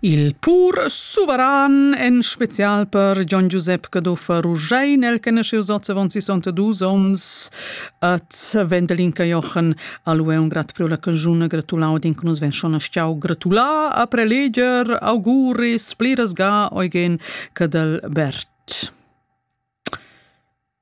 Il pur suveran, en spezial per Gian Giusep Cadoffer Rugein, el conosceus oz avon 62 onns, et Wendelin Jochen a lui un grat pro la canzuna gratulau din nus ven schon stiau gratulà a preleger auguris pliras ga eugen Cadelbert.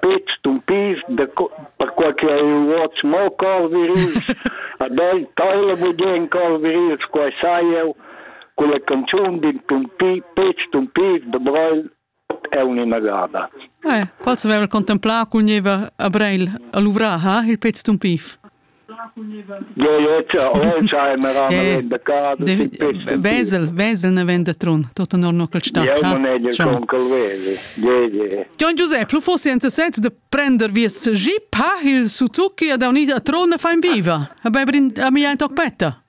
Pet stumpis, perquai che ei uots mo cor virils, ad ei teila bugen cor virils, quei sai jeu, culla canzun d'in tumpi, pet stumpis da Breil ot aunc inagada. Eh, quals haveva contemplau cun nieva a Breil a luvrar, ha il pet stumpif? Vesel, Vesel ne vend da Trun, tot honor no quel stat. Gion Giuseppe, lu fossi enza sez de prender vies jeep, ha il Suzuki ad aunida Trun e fa in viva. A bei brin a mia in toc petta.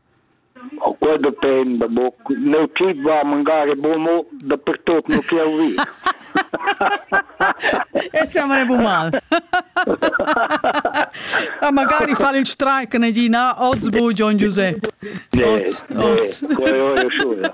Quei dependa buc. Neu chi va magari bumo dapertut nu chi ho vi. E ti amrebbu mal. Ah, magari fa il strike negina oz bu Gian Giuseppe. Oz, oz. Quello è sciura.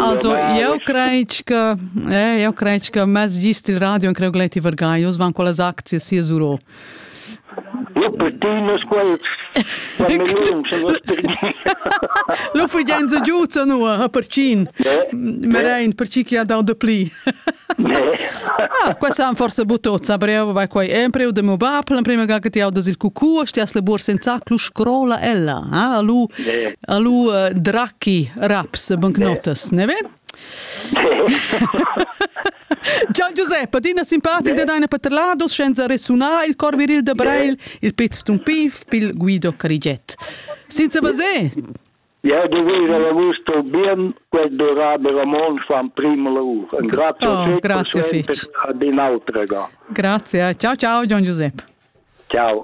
Also, eu crei che eh, eu crei che mez gist il radio in creu gleiti vergai, us van quellas aczies hier sur o. Lo pretino squal Lo fugenza giuza nu a percin. Merein per chi chi ha dau de pli. Ah, questa han forse butozza, bravo vai quai.Empre u de mio bab, la prima ga che ti audas il cucù, sti as le bur senza clu scrola ella. Ah, lu Alu uh, dracchi raps bancnotas, ne vem? Gian Giuseppe, adina simpatic de deine paterlados, senza resunar il cor viril de Breil, il pez tun pif, pil Guido Carigiet. Senza vaser! Ja, de vira l'augusto bien quel durabel Ramon fan primo lavur. Grazie, oh, grazie fetch. ad in autrega. Grazie. Ciao ciao Gian Giuseppe. Ciao.